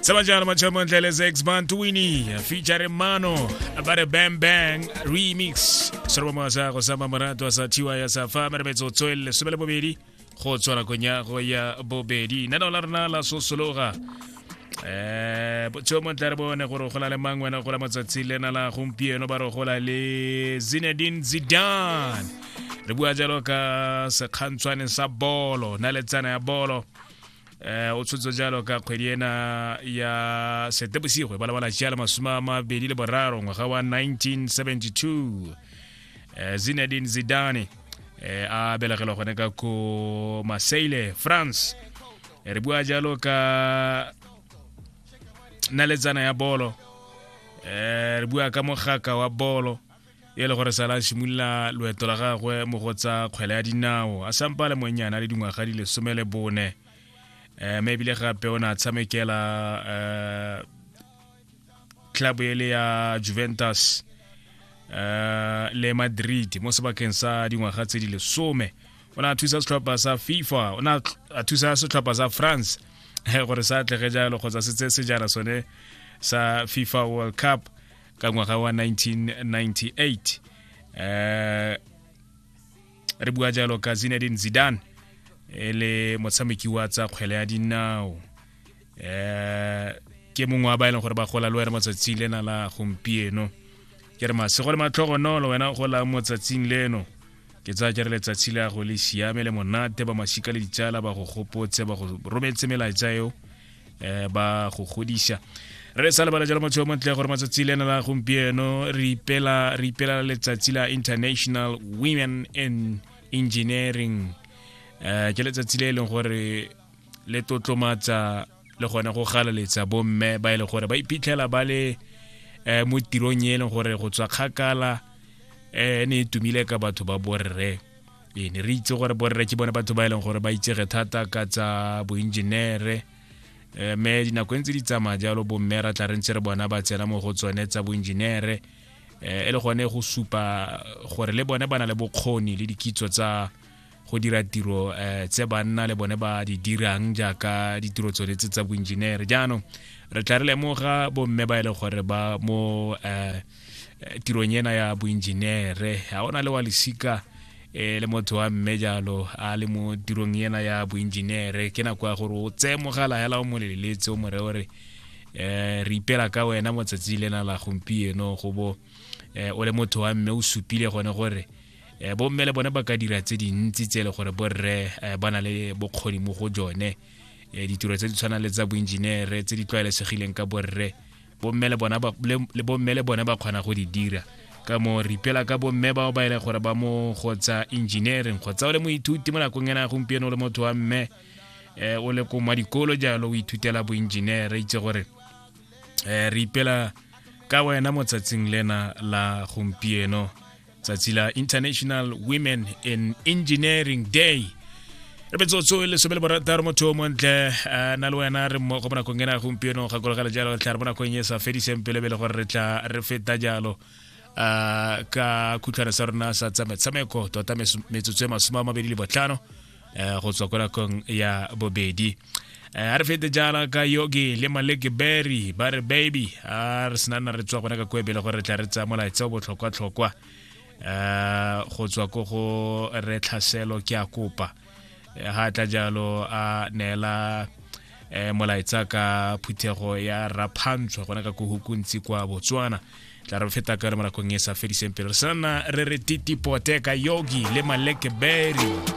Sema jana machama ndeleza ex band Twini featuring Mano about a Bang Bang remix. Soroba mwasa go sama marato a sa tiwa ya sa fa mara betso tswele sebele bobedi go tswala konya go ya bobedi. Nana la rena la sosologa. Eh botso mo tlare bone gore go la le mang wena go la matsatsi le na la gompieno ba re go la le Zinedine Zidane. Re bua jalo ka sekgantshwane sa bolo, na le tsana ya bolo. eh o tshotso jalo ka kgwedi ena ya setebosigwe ba lebala jalo masome a mabedi le boraro ngwaga wa 1972 eh zinedine zidane eh a belegelwa gone ka ko marseille france eh, re bua jalo ka naletsana ya bolo eh re bua ka mogaka wa bolo e le gore sala a simolola loeto la gagwe mo go tsa kgwele ya dinao a sampa le monnyana le dingwaga di lesome le bone um mme ebile gape o ne a tshamekela um club e le ya juventus um le madrid mo sebakeng sa dingwaga tse di lesome o ne a thusa setlhopha sa fifa o ne a thusa setlhopha sa france gore sa atlege jalo kgotsa se tse sejana sone sa fifa world cup ka ngwaga wa 1998 eh re bua jalo ka Zinedine Zidane e le motshameki wa tsa kgwele ya dinao eh ke mongwe wa ba e leng gore ba gola le wena matsatsi lena la gompieno ke re masego le matlhogonolo wena gola motsatsing leno ke tsaya ke re letsatsi la go le siame le monate ba masika le ditsala ba go gopotse ba go rometse melaetsa eo eh, ba go godisa re sa lebala jalo motho yo montle gore matsatsi le ena la gompieno re ipela re ipela letsatsi la international women in engineering eh ke letsatsi le e leng gore le tlotlomatsa le gone go galaletsa bomme ba e leng gore ba iphitlhela ba le eh, mo tirong e leng gore go tswa kgakala eh, ne e tumile ka batho ba borre ee ne re itse gore borre ke bone batho ba e leng gore ba itsege thata ka tsa boenjenere um me dinako e ntse di tsamaya jalo bomme ra tla re ntse re bona ba tsena mo go tsone tsa boenjenere um e le gone go supa gore le bone ba na le bokgoni le dikitso tsa go dira tiro um tse banna le bone ba di dirang jaaka ditiro tsone tse tsa boenjenere jaanong re tla re lemoga bomme ba e leng gore ba mo um eh, tirong ena ya boenjenere ga o na le wa lesika eh, le motho wa mme jalo a le mo tirong ena ya boenjenere ke nako ya gore o tseye mogala hela o mo leleletse o more ore eh, re ipela ka wena motsatsi lena la gompieno go bo eh, o le motho wa mme o supile gone gore eh, bomme le bone ba ka dira tse dintsi tse e le gore borre eh, ba na le bokgoni mo go jone eh, ditiro tse di tshwanang le tsa boenjenere tse di tlwaelesegileng ka borre bomme le bona le bomme le bone ba kgona go di dira ka mo re ipela ka bomme bao ba ele gore ba mo kgotsa engineering kgotsa o le moithuti mo nakong ena gompieno o le motho wa mme um o le ko mwa dikolo jalo o ithutela boengineere itse gore um re ipela ka wena motsatsing lena la gompieno tsatsi la international women in engineering day re metsotso e lesome le borataro motho o montle a na le wena re mmogo mo nakong ena gompieno gakologela jalo re tla re mo nakong e sa fediseng pelebele gore re tla re feta jalo ka khutlhwane sa rona sa tsa metshameko tota metsotso e masome a mabedi le botlhano eh, go tswa ko nakong ya bobedi eh, a re fete jaana ka yogi le maleke berry ba re baby a re senana re tswa gona ka koebele gore re tla re tsaya molaetsa o botlhokwa-tlhokwa um go tswa ko go re tlhaselo ke a kopa ga tla jalo a neela eh molaetsa ka phuthego ya raphantshwa gona ka kohukuntsi kwa botswana tla re feta ka re mo nakong e sa fediseng pele re sana re re titipote ka yogi le maleke berry